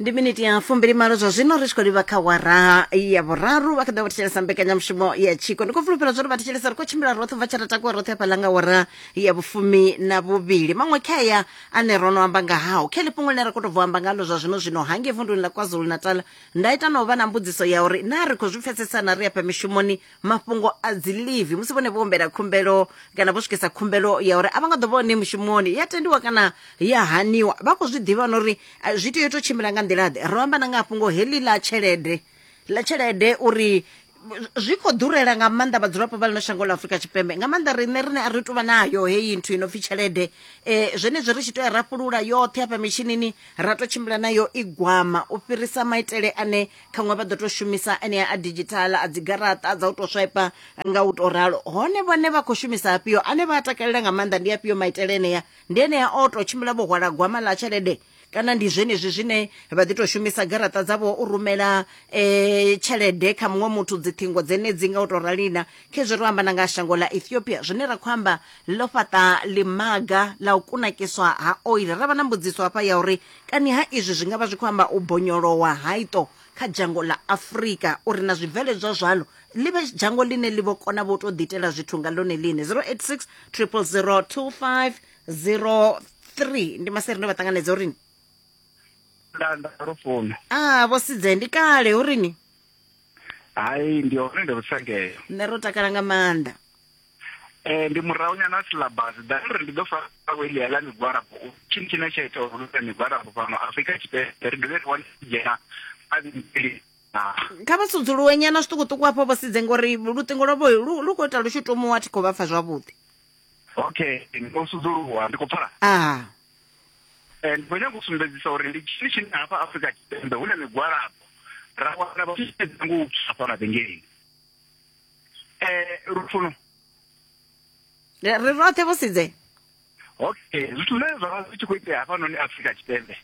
ndi miniti ya fumbili malo zwa zwino ri tshi khou livha kha wara ya vhuraru vha kha ḓa vha thetshelesa mbekanyamushumo ya tshiko ndi khou fulufhela zwa uri vha thetshelesa ri khou tshimbila roṱhe bva tsha tatakuwa roṱhe hafhaḽa nga wara ya vhufumi na vhuvhili maṅwe khea ane ro no amba nga hao khe ḽifhungo ḽine ra khou tou bvo amba ngalo zwa zwino zwino hangei vunduni ḽa kwazulu natal nda ita na u vha na mbudziso ya uri naa ri khou zwi pfesesana ri afha mishumoni mafhungo a dzi leave musi vhone vho humbela khumbelo kana vho swikisa khumbelo ya uri a vha nga ḓo vha hone mushumoni ya tendiwa kana ya haniwa vha khou zwi ḓivha na uri eh, zwi tea u tou tshimbila nga nḓila-ḓe ro amba na nga fhungo heḽi ḽa tshelede ḽa tshelede uri zwi khou ḓurela nga maanḓa vhadzulapo vha ḽino shango ḽa afurika tshipembe nga maanḓa riṋe rine a ri tuvha nayo heyi nthu i no pfi tshelede um zwenezwi ri tshi tou ya ra fhulula yoṱhe hafha mishinini ra tou tshimbila nayo i gwama u fhirisa maitele ane ṱhaṅwe vha ḓo tou shumisa enea a digital a dzigaraṱa dza u tou swipe nga u tou ralo hone vhone vha khou shumisa afhio ane vha a takalela nga maanḓa ndi afhio maitele enea ndi enea o tou tshimbila vho hwala gwama ḽa tshelede kana ndi zwenezwi zwine vha ḓi tou shumisa garaṱa dzavho u rumela um tshelede kha muṅwe muthu dziṱhingo dzenedzi nga u tou ralina khezwi ro amba na nga shango ḽa ethiopia zwine ra khou amba ḽo fhaṱa ḽimaga ḽa u kunakiswa ha oil ra vha na mbudziso hafha ya uri Kani ha izwi zwi nga vha zwi khou amba u bonyolowa ha iṱo kha dzhango ḽa Afrika uri na zwibveledzwa zwalo ḽi vhe dzhango ḽine ḽi vho kona vho tou ḓiitela zwithu nga ḽone ḽine 086 000 2503 ndi maseri ndo vha ṱanganedza uri ni nda nda ro fono ah vho sidze ndi kale uri ni hai ndi hone ndi rusangela nṋe ro takala nga maanḓa Eh, ndi murahu nyana a silabasi dani uri ndi ḓo fara weli ya ḽa migwalabo u tshini tshine tsha ita uri luta migwalabo fhano afrika tshipembe ri dovhe ri wane dzhena a vhili kha vha sudzuluwe nyana zwiṱukuṱuku hafho vho sidze ngori luṱingo lwavho lu lu khou ita lu tshi tomuwa thi khou vha pfa zwavhuḓi okay ndi khou sudzuluwa ndi khou pfala aha eh, ndi khou nyanga u sumbedzisa uri ndi tshini tshine hafha afrika tshipembe hu na migwalabo ra wana vha tshi sedza ngo u psa fhano vhengeleni eh lufuno ri roṱhe vho sidze okay zwithu zwine zwa vha zwi tshi khou itea hafhanoni afrika tshipembe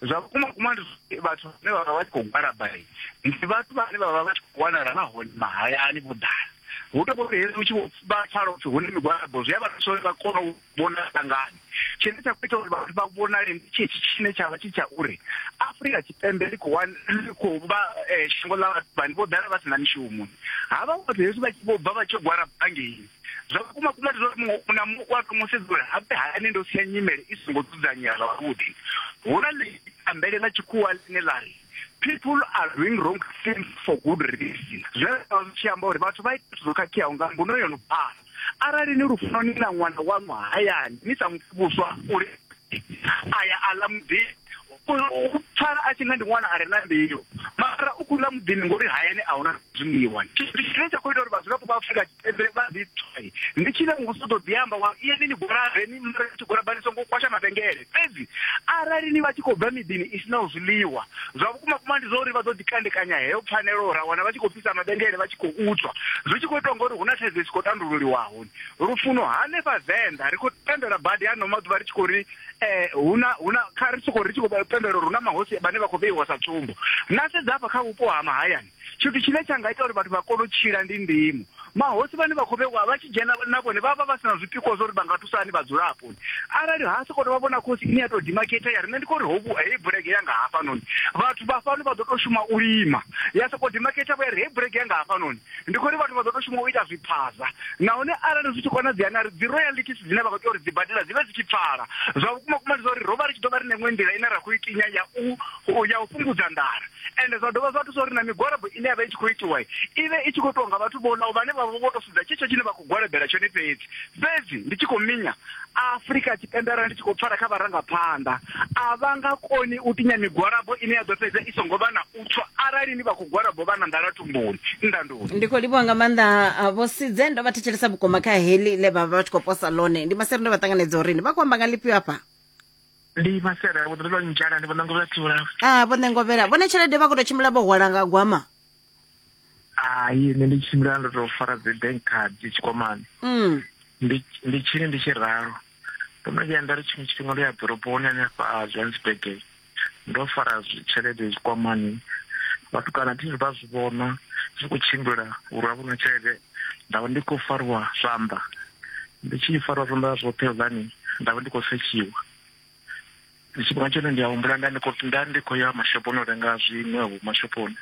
zwa vhukuma kuma ndi vhathu vhane vha vha vha tshi khou gwalabale ndi vhathu vhane vha vha vha tshi khou wanala vha hone mahayani vho ḓala hu to vhori hezwi u tshi vha pfala upfi hune migwalabo zwi a vha thusa uri vha kone u vhonala ngani tshine tsha khou ita uri vhathu vha vhonale ndi tshitshi tshine tsha vha tshi tsha uri afurika tshipembe ḽi khou ḽi khou vha eh, shango ḽa vhathu vhane vho ḓala vha si na mishumo ha vha vhathu hezwi vha tshi vho bva vha tshi gwara bangeni zwa vhukuma kuma ndi zwa uri muṅwe na muṅwe u a thoma u sedza uri habe hayani ndo sia nyimele i songo dzudzanyea zwavhuḓi hu na ḽitambele ḽa tshikhuwa ḽine ḽa ri people are doing wrong things for good reason zwe zwa zwi tshi amba uri vhathu vha ita zwithu zwo khakheaho nga mbuno yo no pfala Arali ni lufuno ni na ṅwana waṋu hayani, ni sa mu fhi vhuswa uri a ya a ḽa muḓini, u pfala a tshi nga ndi ṅwana a re na mbilu, mara u khou ḽa muḓini ngori hayani a hu na zwiḽiwa. Tshithu tshine tsha khou ita uri vhadzulapo vha Afrika Tshipembe vha ḓipfe ndi tshine muvhuso u ḓo ḓi amba wa ri, Iyani ni gwalabe, ni mare ni tshi gwalaba ni songo kwasha mavhengele. Fhedzi arali ni vha tshi khou bva miḓini i si naho zwiḽiwa, zwa vhukumakuma ndi zwa uri vha ḓo ḓi kandekanya heyo pfanelo, ra wana vha tshi khou fhisa mavhengele vha tshi khou utswa. Zwi tshi khou itwa ngori hu na thaidzo i si khou tandululiwaho. Lufuno hanefha Venḓa, ri khou pembela badi ano maḓuvha ri tshi khou ri hu na, hu na, kha ri sokou ri tshi khou pembela uri hu na mahosi vhane vha khou vheiwa sa tsumbo. Na sedza hafha kha vhupo ha mahayani, Tshithu tshine tsha nga ita uri vhathu vha kone u tshila ndi ndimo. Mahosi vhane vha khou vhewa vha tshi dzhena na vhone vha vha vha si na zwipikwa zwa uri vha nga thusa hani vhadzulapo. Arali ha sokou tou vha vhona khosi ine ya tou dimakhetha ya ri nṋe ndi khou ri ho vhu, heyi bulege ya nga hafhanoni vhathu vha fhano vha ḓo tou shuma u lima, ya sokou dimakhetha vho ya ri heyi bulege ya nga hafhanoni ndi khou ri vhathu vha ḓo tou shuma u ita zwiphaza. Nahone arali zwi tshi konadzea na ri dzi royalties dzine vha khou tea uri dzi badela dzi vhe dzi tshi pfala. Zwa vhukuma vhukuma ndi zwa uri ro vha ri tshi ḓo vha ri na iṅwe nḓila ine ra khou i tinya ya u ya u fhungudza nḓala. ende zwa dovha zwa thusa uri na migwalabo ine ya vha i tshi khou itiwa i vhe i tshi khou itiwa nga vhathu vhonaho vhane vha vha vho to sedza tshetsho tshine vha khou gwalabela tshone fhedzi fhedzi ndi tshi khou minya afurika tshipembe arali ndi tshi khou pfala kha vharangaphanḓa a vha nga koni u tinya migwalabo ine ya ḓo fhedza i songo vha na u tswa arali ni vha khou gwalabo vha na nḓala tumboni ndandoni ndi khou livhuwa nga maanḓa ah, vho sidze ndo vha thetshelesa vhukuma kha heli le vha vha vha tshi khou posa lone ndi maseri ndo vha ṱanganedza uri ni vha khou amba nga lifhio afha ndi masera vho ḓo ndzhala ndi vhona ngovela thula ah vho ngovela vhone tshelede vha kho to tshimbila vho hwala nga gwama hayi nṋe ndi tshimbila ndo to fara dzi bank card tshikwamani mm. ndi ndi tshini ndi tshi ralo ndo no vhuya nda ri tshiṅwe tshifhinga ndo ya ḓoroboni hanefha a johannesburg ndo fara tshelede tshikwamani vhatukana thi vha zwi vhona zwi khou tshimbila uri a vhona tshelede nda vha ndi khou fariwa zwanḓa ndi tshi fariwa zwanḓa zwoṱhe hezani nda vha ndi khou setshiwa tshifhinga tshone ndi a humbula nda ndi khou nda ndi khou ya mashophoni u renga zwiṅwe vho mashophoni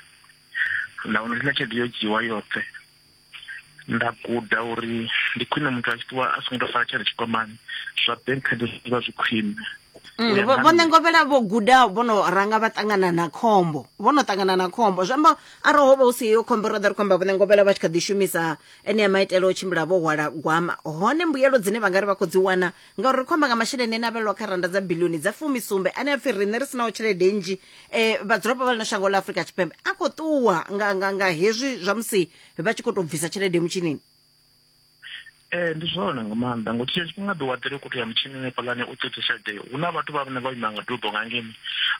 nda vhona uri na tshelede yo dzhiwa yoṱhe nda guda uri ndi khwine muthu a tshi ṱuwa a songo tou fara tshelede tshikwamani zwa bank card zwi vha zwi khwine Mm, vho ṋengovhela vho guda vho no ranga vha ṱangana na khombo vho no ṱangana na khombo zwi amba arali ho vha hu si heyo khombo ro ḓa ri khou amba vhone ngovhela vha tshi kha ḓi shumisa enea maitele o tshimbila vho hwala gwama hone mbuyelo dzine vha nga ri vha khou dzi wana ngauri ri khou amba nga masheleni ane a vhelelwa kha randa dza bilioni dza fumisumbe ane a pfhi riṋe ri sinaho tshelede nnzhi um vhadzulapo vha ḽino shango ḽa afurika tshipembe a khou ṱuwa nga hezwi zwa musi vha tshi khou tou bvisa tshelede mutshinini Ee, ndi zwone nga maanḓa ngo tshiya tshifhinga ḓi waḓela u kutea mutshini hanefhaḽani u ṱoḓa tshelede hu na vhathu vha vhane vha ima nga dubo nga ngeni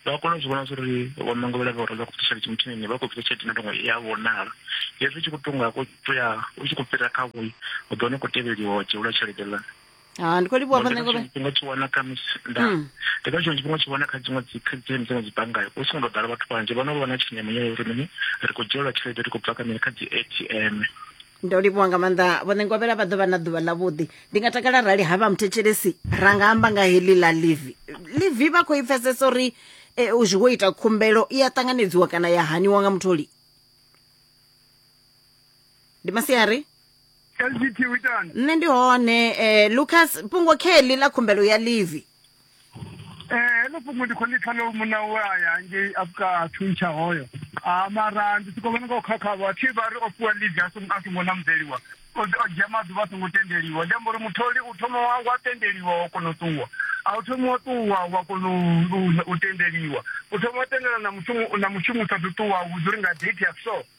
vha kona u zwi vhona zwa uri vho ṋangovhela vha uri vha khou ṱoḓa tshelede mutshini vha khou bvisa tshelede na tongo i a vhonala hezwi u tshi khou tonga ko ya u tshi khou fhira kha vhoi u ḓo wana u khou tevheliwa wa dzhielwa tshelede ḽa ha ndi khou livhuwa vhaṋangovhe tshifhinga tshi wana kha misi nda hmm. ndi kha tshiṅwe tshifhinga tshi wana kha dziṅwe dzi kha dziṅwe dziṅwe dzi bannga hu songo tou ḓala vhathu vhanzhi vha no vha na tshenzhemo ya uri mini ri khou dzhielwa tshelede ri khou bva kha mini kha dzi atm ndo livhuwa nga maanḓa vhone ngovhela vha ḓo vha na ḓuvha ḽavhuḓi ndi nga takala rali ha vha muthetshelesi ra nga amba nga heḽi ḽa livi livi vha khou i pfesesa uri eh, u zwi wo ita khumbelo i a ṱanganedziwa kana ya haniwa nga mutholi ndi masiari lgt u itani nṋe ndi hone eh, lucas fhungo kheḽi ḽa khumbelo ya livi Eh, heḽo fhungo ndi khou ḽi pfa ḽo muna we a ya ngei afka thuntsha hoyo a mara ndi soko vhona nga u khakhavho thi vha ri o fhiwa leave a songo a songo namzeliwa o o dzhia maḓuvha a songo tendeliwa ndi amba uri mutholi u thoma wa wa tendeliwa wa kona u ṱuwa a u thoma wa ṱuwa wa kona u- u- u tendeliwa u thoma wa tendelana na mushumo na mushumo u sa ṱuṱuwa a vhudza uri nga date ya so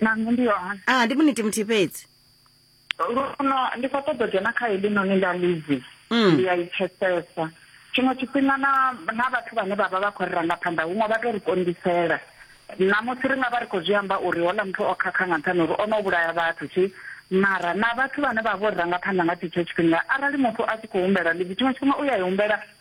nanu ndi hone a ah, ndi muniti muthihi fhedzi luno ndi khou ṱoḓa dzhena kha heḽi noni ḽa livi mm. ndi a i pfesesa tshiṅwe tshifhinga na na vhathu vhane vha vha vha khou ri ranga phanḓa huṅwe vha tou ri konḓisela namusi ri nga vha ri khou zwi amba uri hola muthu o khakha nga nṱhani uri o no vhulaya vhathu tshi mara na vhathu vhane vha vho ri ranga phanḓa nga tshetsho tshifhinga arali muthu a tshi khou humbela livi tshiṅwe tshifhinga u ya i humbela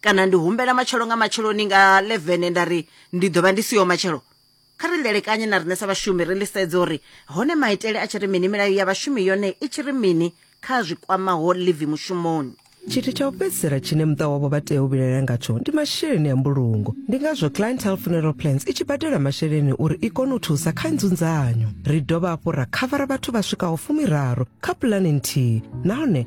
Kana ndi humbela matshelo nga matsheloni nga 11 nda ri ndi ḓo vha ndi siho matshelo? Kha ri ḽelekanye na riṋe sa vhashumi ri ḽisedze uri hone maitele a tshi ri mini, milayo ya vhashumi yone i tshi ri mini kha zwi kwamaho ḽivi mushumoni. Tshithu tsha u fhedzisela tshine muṱa wavho vha tea u vhilaela ngatsho ndi masheleni a mbulungo. Ndi ngazwo Clientele Funeral Plans i tshi badela masheleni uri i kone u thusa kha nzunzanyo. Ri dovha hafhu ra khavara vhathu vha swikaho fumiraru kha pulane nthihi nahone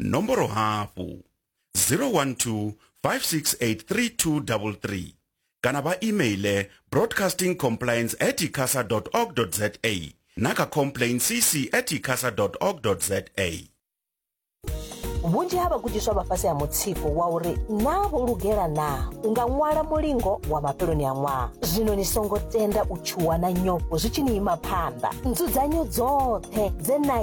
nomboro hafhu 012 5683233 kana vha emaile broadcasting compliance at icasa org za na kha complain cc at icasa org za vhunzhi ha vhagudiswa vha fhasi ha mutsiko wa uri naa vho lugela naa u nga ṅwala mulingo wa mafheloni a ṅwaha zwino ni songo tenda u tshuwa na nyofho zwi tshi ni ima phanḓa nzudzanyo dzoṱhe dze na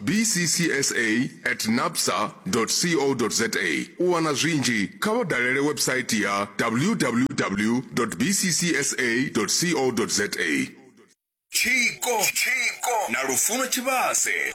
bccsa at napsa co za u wana zwinzhi kha vha dalele website ya www bccsa co za tshiko tshiko na lufuno tshivhase